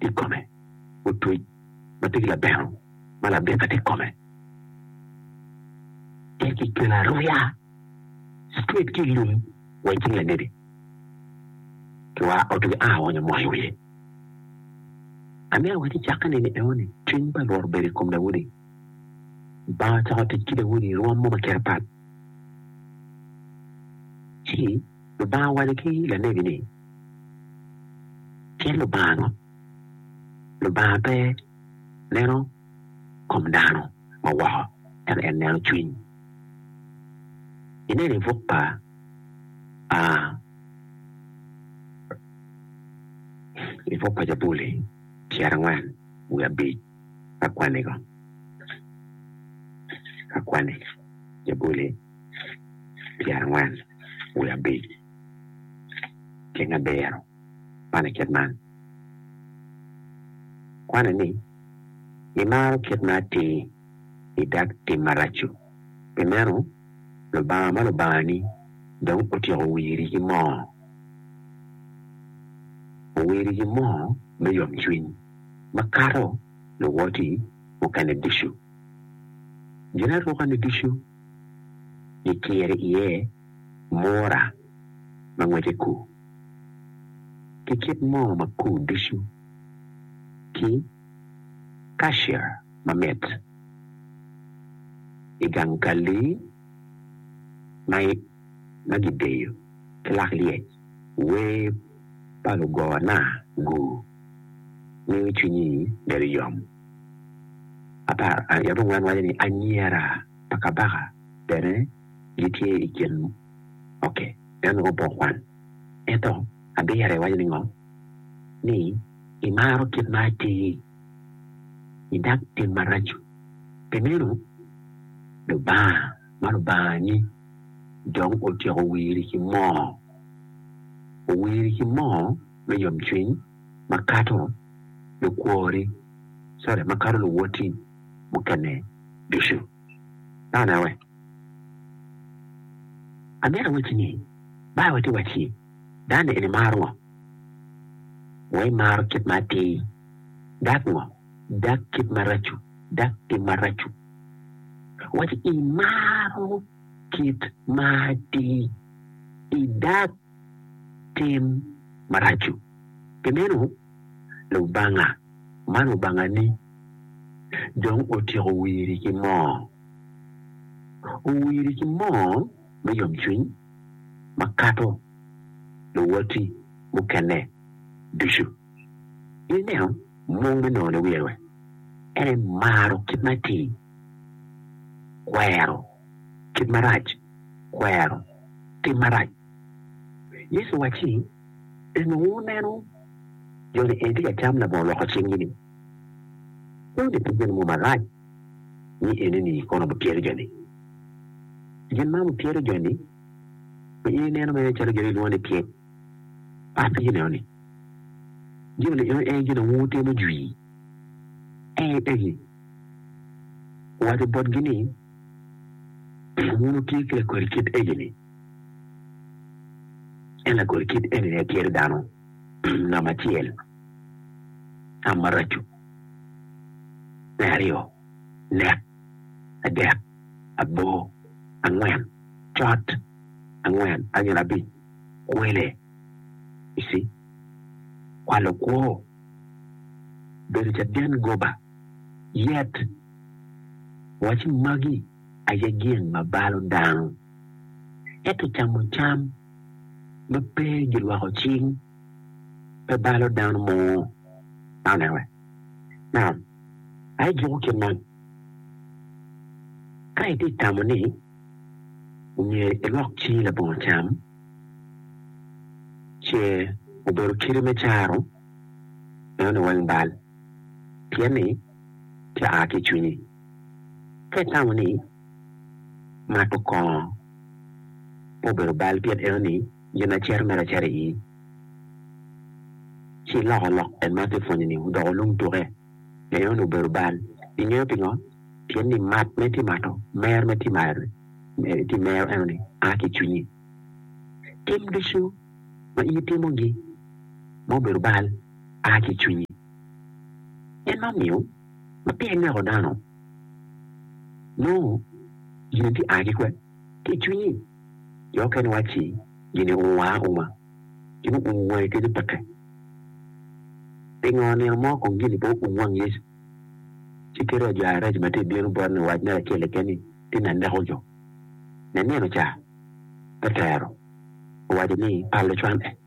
i kome, otwec ma tye ki labeno ma labika tye i kome, tye ki kelo aruya straight ki i lum wa i cing lanebi, ki wa otu ki aa oonyo moo i wiye. Ame awaco i cakke neni enoni, cwiny pa Rwot obedo i kom Daudi, Lubanga ocako tic ki Daudi i rwom mo ma kite pat, ci Lubanga owaco ki lanebi ni, Tyen Lubanga ngo? Lubanga pe neno kom dano ma woko, ento en neno cwiny. Ineno i buk pa i buk pa Jabuli pyerangwen wiye abic ka kwanni ko, ka kwanni Jabuli. pyerangwen wiye abic ki nge abiro man i kit man, kwane ni Imaro kit ma atir idak tim marac-cu, pi meno Lubanga ma Lubangani dong otyeko wiri ki moo, owiri ki moo me yomcwiny makato luwoti mukene ducu. Ginarukani ducu. Gikiri iye mura ma ngwece kur, ki kit mo ma kur ducu, ki kashir mamit i gang kalli ma gideyo ki lak lyec. Wer pa lugona-gu miyo cwinyi bedo yom. apar aryo mungwen waco ni anyira pa kabaka bene gitye i kin oke nen nongo pe okwan. Ento abira iwaco ni ngo? Ni imaro kit ma atir idak tim maraco. Pi meno Lubanga ma Lubangangi dong otyeko wiri ki moo, owiri ki moo me yomcwiny. makato lukwori, sorry, makato luwoti mukene ducu. Nongo aneno wek amito awacci ni, Baibul tye ka wac ni, Dano-ni en imaro ngo? Wek imaro kit ma atir. Dak ngo? Dak kit maraco, dak tim maraco. Owacci, Imaro kit ma atir, idak. tim marac-cu. Pi meno, Lubanga man Lubangani dong otyeko wiri ki moo. Owiri ki moo me yomcwiny makato luwoti mukene ducu. In ineno mung me nongo niwiro-e? En aye maro kit ma atir, kwero. kit marac kwero tim marac. Yecu owacci, En onongo oneno jo-ni en tye ka cam labongo lwoko cinggi-ni. Wun ni pud meno mom arac, ni enini kono wupyero jo-ni? Pi gin man wupyero jo-ni? Pi in ineno mere calo jo-ni gilwongo ni pyek? Apenyi nenoni, gin onongo eno en gin onongo wutimo jwi? Ee, egi. Owaco botgi ni. Pien wun wutye ki lagoli kit egi-ni, en lagoli kit eni-ni aye tyer dano nam acel, tam maraco, me aryo, nek, adek, abor, angwen, cot, angwen, anyira abic, kwele. You see? Kwalo kwo, bedo caden goba, yet. Waco magi aye gin ma balo dano, ento camo cam ma pe gilwoko cing pe balo dano mo. Anyway, now, aye juko kit man, Ka itye tamo ni myero ilwok cingi labongo cam ce obedo kite me caro, meno ni weng bal, pien ni. ki a ki i cwinyi. Ka itamo ni mato kongo pe obedo bal pien enoni gin a cito mere acita i ii, ci iloko lok en ma ati pwonyo ni odoko olung tuke pien enoni obedo bal. Ingeyo pingo? Pien ni mat ma iti mato, mer ma iti mero, iti mero enoni a ki i cwinyi. Tim ducu ma in itimogi ma obedo bal a ki i cwinyi. Gin ma omiyo ma pire ineko dano nongo gin tye a ki kwe ki i cwinyi. Jo okene wacci gin owungo wa auma, gin owungo wangi kadi peke. Pingo nino mo kong gin-ni pe oum wang Yecu ci kite wa jo areco ma tye ka bino bot ni owac mere acel keken ni, Tin ni aneko jo. Nenieno ca, Petero owaco ni, Palo cwan-e.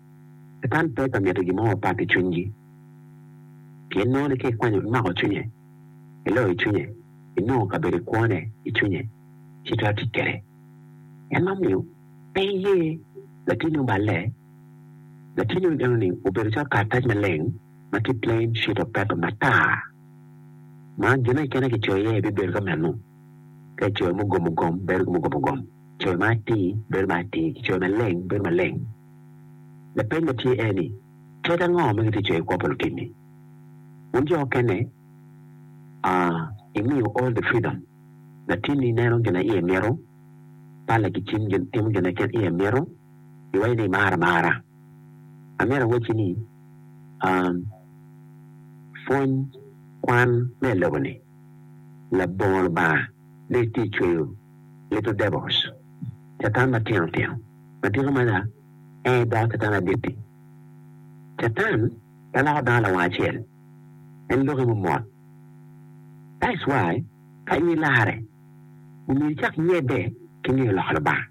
Catan pe ka mito gin mo mapat i cwinygi, pien nongo ni ka ikwanyo imako cwinye, iloyo cwinye, inongo kabedo i kwone i cwinye, ci itwero tic kwede. En ma omiyo pe iye latinni oballe, latinni ento enoni obedo calo karatac maleng ma tye plain sheet of paper, matar, ma gine kene kicoyo iye aye bibedo ka meno. Ka icoyo mugom ogom, bedo ki mugom ogom, coyo ma atir, bedo ma atir, kicoyo maleng, bedo maleng. Lapeny ma tye en ni, Tek ango ma gitye coyo kwo pa lutim-mi? Wun jo okene, a imiyo all the freedom. Latinni neno gin a iye mito, palla ki cim timo gin a kin iye mito, iwaco ni imara amara. An myero awacci ni, a pwony kwan me i lobo-ni, labongo Lubanga ne tye cweyo. Little Devils, Catan Matino Tino. Matino mada aye doko Catan Adit-ti. Catan pe loko dano lawang acel, en loki mo mot. That's why ka in ilarre, omyero icak nyebbe ki ngeyo loko Lubanga,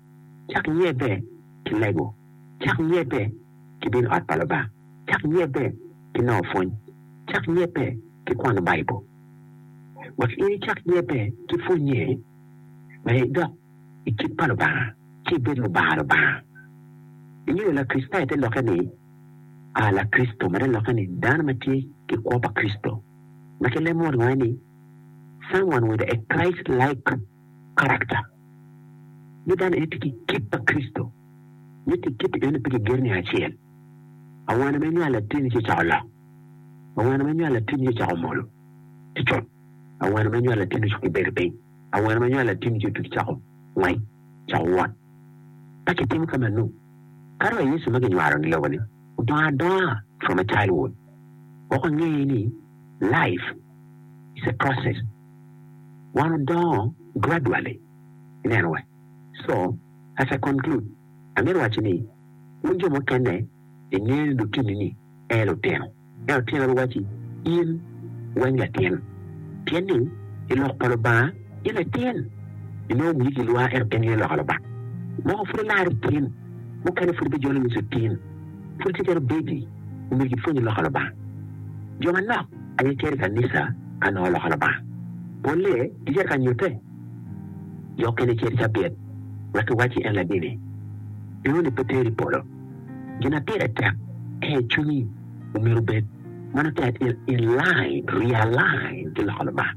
cak nyebbe ki lego, cak nyebbe ki bino i ot pa Lubanga, cak nyebbe ki nongo pwony, cak nyebbe ki kwano Baibul. wek in icak nyette ki pwonnye me dok i kit pa Lubanga ci ibed lubanga Lubanga. Ingeyo Lakricitayo te lokke ni a Lakricito ma te lokke ni dano ma tye ki kwo pa Kricito, ma ki lemo wanonge ni someone with a Christ-like character. Ni dano eni tye ki kit pa Kricito, mitte kit-ti eno pe ki gero niang acel. Awano me nywal latinni ci ocako lok. Awene ma nywal latingi ocako molo ki cot, awene ma nywal latingi ocako ki bedo piny, awene ma nywal latingi ci otugi cako ngwec, cako wot. Ka kitimo ka manu, kato wa Yecu ma ginywalo-ni lobo-ni odongo adonga from a childhood. Weko ange ni life is a process, wan odongo gradually, ineno wa. So, as I conclude, amito waco ni, wun jo mukene ingeyo ni lutinini, en lutino. Ento tyenwa biwacci, 'In weny latin, pien ni i lok pa Lubanga in latin. Inongo wii gilwar ento en gin loka Lubanga. Moko pud ilar itin, mukene pud gijolo nus itin, pud itye kene obebi, omyero gipwonyi loka Lubanga. Jo manok aye gicito i kanica ka nongo loka Lubanga. Polle gicito ka nyutte. Jo okene cito cabit, wek giwacci en ladini. Inongo ni pe teri i polo. Gin ma pire tek aye ni cwinyi myero obed ma nongo tye in line, realign ki loko Lubanga.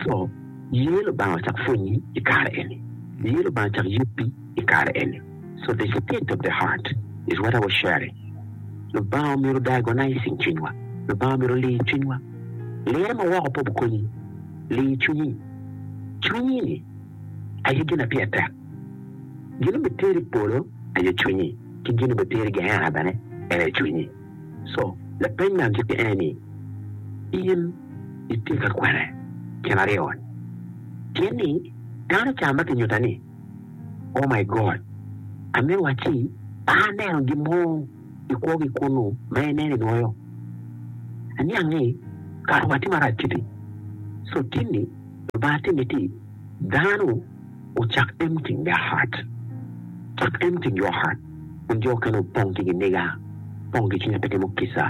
Co, ye Lubanga ocak pwonyi i kare eni, ye Lubanga ocak yubbi i kare eni. So the state of the heart is what I was sharing. Lubanga myero diagonizing cwinywa, Lubanga myero olir cwinywa. Lirre ma woko pe obikonyi, lir cwinyi. Cwinyi ni aye gin ma pire tek. Gin ma biteri i polo aye cwinyi, ki gin ma biteri i Geena bene en aye cwinyi. Co, lapeny me agikki en ni, In itye ka kwene kin aryo? Pien ni dano ca ma kinyuta ni, Oh my God, ame wacci pe aneno gin mo i kwogi kunnu ma ineno i nwoyo? Aniang ni kato watye marac kiti. Co, tin ni Lubanga timi ti dano. ocak en ki Yahat, cak en ki Johat, kun jo okene opong ki giniga, gipong ki cwiny ma pe timo kica,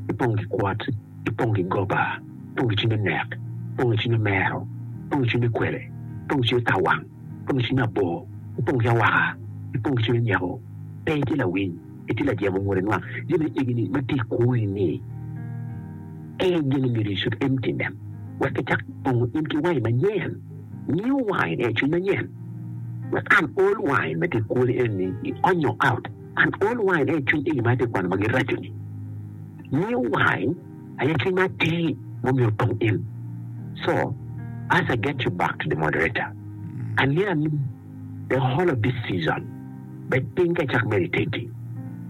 gipong ki kwot, gipong ki goba, gipong ki cwiny me nek, gipong ki cwiny me mero, gipong ki cwiny me kwele, gipong ki cwiny me tawang, gipong ki cwiny me abor, gipong ki awaka, gipong ki cwiny me nyeko. Pe itye lawiny, itye lajemo ngute nwang, jami ni egini ma tye i kori ni, ee gin myero icud empty them, wek gicak pongo in ki wangi manyen. Miyo wange ni acwiny manyen wek an ol wange ma tye kwoli eni i ony nyo out. An ol wange ni acwiny eni ma atye kwano ma giraco ni. Miyo wange aye cwiny ma atir ma omyero otong in. So, as I get you back to the moderator, aniya aniya the whole of this season bed piny ka icak meditate-ti.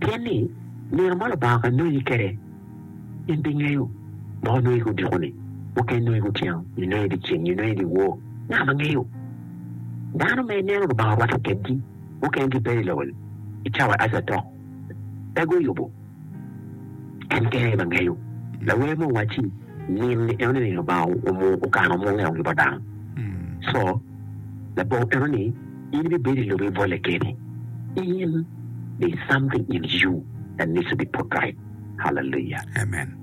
Pien ni, nino ma Lubanga ononyi kede, In ibingeyo ma onongo i odiko-ni, muken nongo i kutyeno, nyo nongo i dyeceng, nyo nongo i dyewor, ngat ma ngeyo dano ma ineno Lubanga orwatte kedgi mukene gibedo i lobo-ni i cawa Eja dok pe guyubo. En kene aye ma ngeyo. Lawer mo owacci, Nino ni en oneno ni Lubanga okano mungeo-gi bot dano. Co, labongo eno ni in ibibedo i lobo ibolle kene. In, there's something in you that needs to be put right. Amen.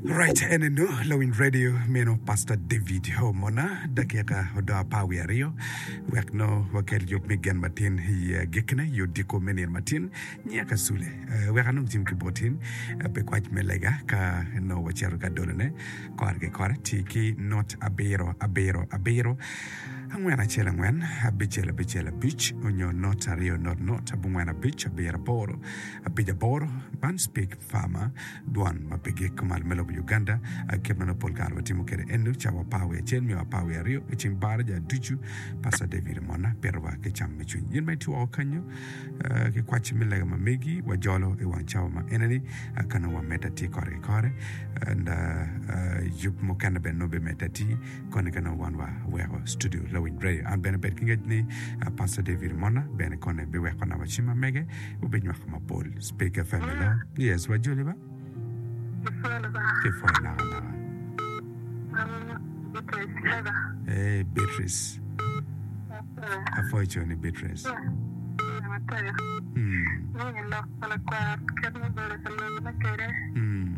Right, en eno lawiny radio meno Pastor David Omona. Dakika odong apar wiye aryo wek nongo wakel yub me gen matin i eh, gikkine i odiko me nino matin. Nyiya ka sule, eh, wek anong tim ki botin eh, pi kwac me lega ka nongo wacito ka dolone kore ki kore. Ti ki not abiro abiro abiro angwen acel angwen abicel abicel abic onyo not aryo not not abongwen abic abiro aboro Apic aboro, man speak farmer, dwan ma pe gik malo me lobo Uganda, kit ma nongo pol kare watimo kwede eno, ca wapar wiye acel nyo apar wiye aryo i cing baraja ducu. Pastor David Omona pitowa ki cam me cwiny. In ma itye woko kenyo, ki kwacci me lega ma megi, wajolo i wang cawa ma ene ni, ka nongo wamedde atir kore ki kore, and yub mukene bene nongo bimedde atir, koni ka nongo wan wa weko studio lawiny radio an bene bed ki ngec ni pasta david omona bene koni biweko na wacim amege wubinywako mapol speak fm elo yes wajoli ba kipwoyo naka naka eh beatrice apwoyo co ni beatrice mm. Mm.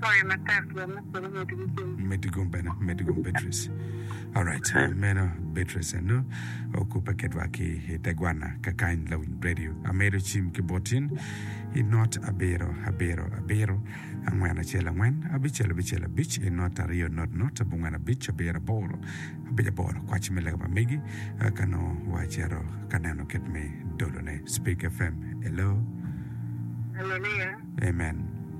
Sorry matek jo me polo miti ki cim. Miti gum bene, miti gum Beatrice. Alright, meno Beatrice eno okubbe kedwa ki i te gwanna kakany lawiny radio. Amedo cim ki botin i not abiro abiro abiro angwen acel angwen abicel abicel abic i not aryo not not abongwen abic abiro aboro abic aboro kwaci me lega pa megi eh, ka nongo wa acito ka neno kit me dolone. Speak FM, hello, Haleluya. amen.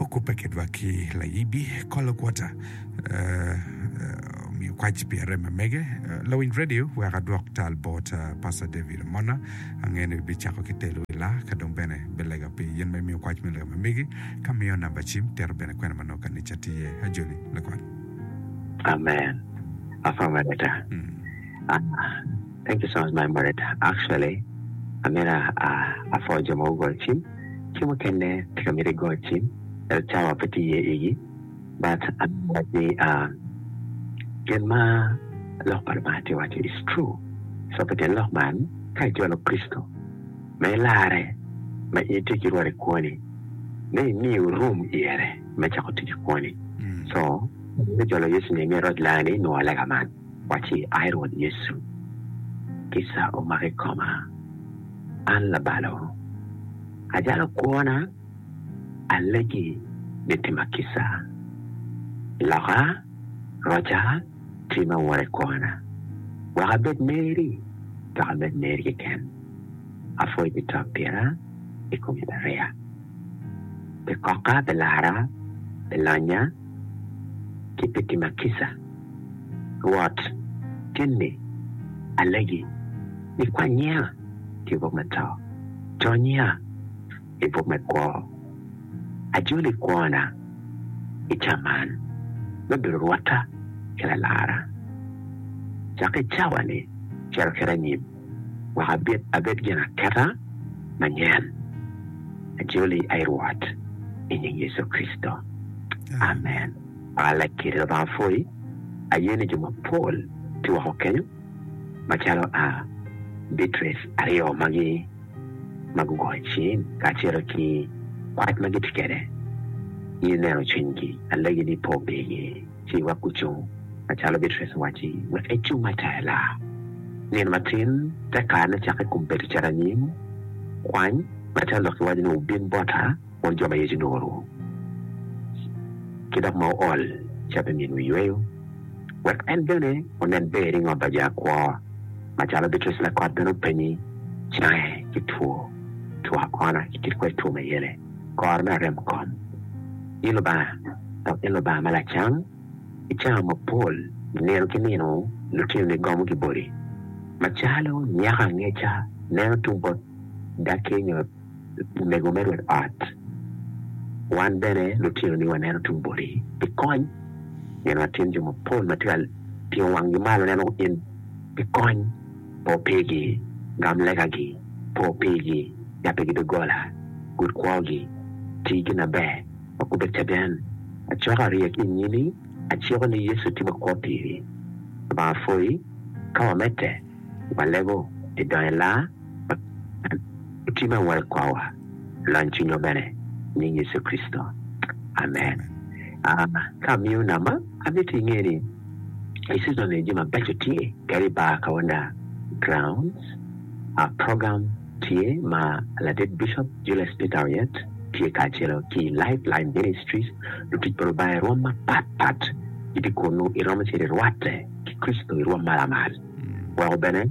Okubbe ki dwak ki layibi kolo kwota omiyo kwac pi arem ma mege lawiny radio wek adwok tal bot Pastor David Omona ange ni bi cako ki telo i laa ka dong bene bi lega pi yen ma imiyo kwac me lega ma megi ka miyo namba cim tito bene kwena ma nongo kanica tye iye ajoli lugot. Amen Papa Mareta Thank you so much my Mareta actually amyero apwony jo ma gugol cim. Ci mukene tye ka miti i got ci ento cawa pe tye iye igi but anongo wac ni gin ma lok pa Lubanga tye waco is true so pi tyen lok man ka itye wa lok Kricito ma ilarre ma in itye ki rwot i kwoni me imiyo room iyere me cako tic i kwoni so me jolo Yecu ni imyero iroc langa ni inwongo lega man. Wacci, Ai Rwot Yecu, kica omak i koma, an labalo. Ajalo kwona, alegi ni tima kica. Loka, roca, tima woro i kwona, wek abed meri, dok amed meri keken. Apwoyi pi to pira i kom Icariya, pi koka, pi lara, pi lonya, ki pi tima kica. Rwot, keni alegi, ikwanyiya ki bwo me to, conyiya i bwo me kwo. Ajolo i kwona i ca man me bedo rwotta ki lalara. Cak i cawa-ni cito kede anyim, wek abed abed ginaketa manyen. Ajoli, ai Rwot, i nying Yecu Kricito, amen. pa Lakiri Lubanga pwoyi. Aye ni jo mapol tye woko kenyo macalo a Beatrice aryo magi ma gugoyo cing kacelo ki kwac ma gitye kwede. In ineno cwinygi, alegi ni po pigi ci iwek gucung macalo Beatrice owacci, wek ecung atela. Nino matin te karene cak i kom bedo caranyim, kwany macalo lok iwaco ni wubin bota. Won jo ma Yecu onongo oruko ki dok ma ool ca pi miyogi yweyo, wek en bene onen ber i ngot pa jo akwo. Macalo Beatrice lakot bene openye, cange ki two two akona ki kit kwer two ma yele, koro me arem kom, i Lubanga, dok in Lubanga ma lacam, i cawa mapol nino ki nino lutinoni gomo ki boti, macalo nyako angeca neno tung bot daki nyo. omego me rwod ot. Wan bene lutinoni waneno tung boti pi kony pien watyen jo mapol ma tye ka tingo wanggi malo neno in pi kony. Po pigi, gam legagi, po pigi, yab pigi doggola, gud kwogi, ti gin maber, wek gubed caden. Acoka ryek ki i nyimi, aciko ni Yecu tye makwo piri. Lubanga pwoyi ka wamedde walego pi donyo i laa. Oti me woro i kwawa, lony cwinywa bene, i nying Yecu Kricito, amen. Ka amiyo namba, amito inge ni i cicona ni jami mabeco tye kadi i bar kaunda, grounds, program tye ma ladit Bicop Julius Peter Oyet tye kacelo ki Life Line Ministries. Lutic pa Lubanga i rwom mapat pat gitye kunu, iromo cito irwatte ki Kricito i rwom malamal weko bene.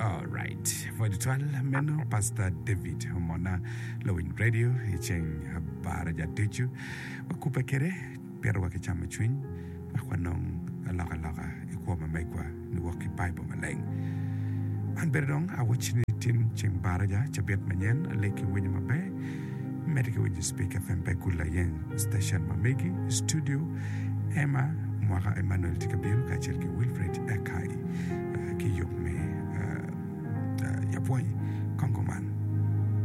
Alright, pwod twal meno Pastor David Omona, lawiny radio i ceng Abaraja ducu. Wakubbe kede, pire wa ki camo cwiny, wek wanong aloka loka i kwo ma megwa niwok ki Bible maleng. An bene dong awac ni tin ceng Baraja, cabit manyen, aleg ki winyo maber, mede ki winyo Speak FM pe gul aye. Station ma megi i studio, Emma Mwaka, Emmanuel tye ka bino kacel ki Wilfred Akai ki yub me yapwony. Kongo man.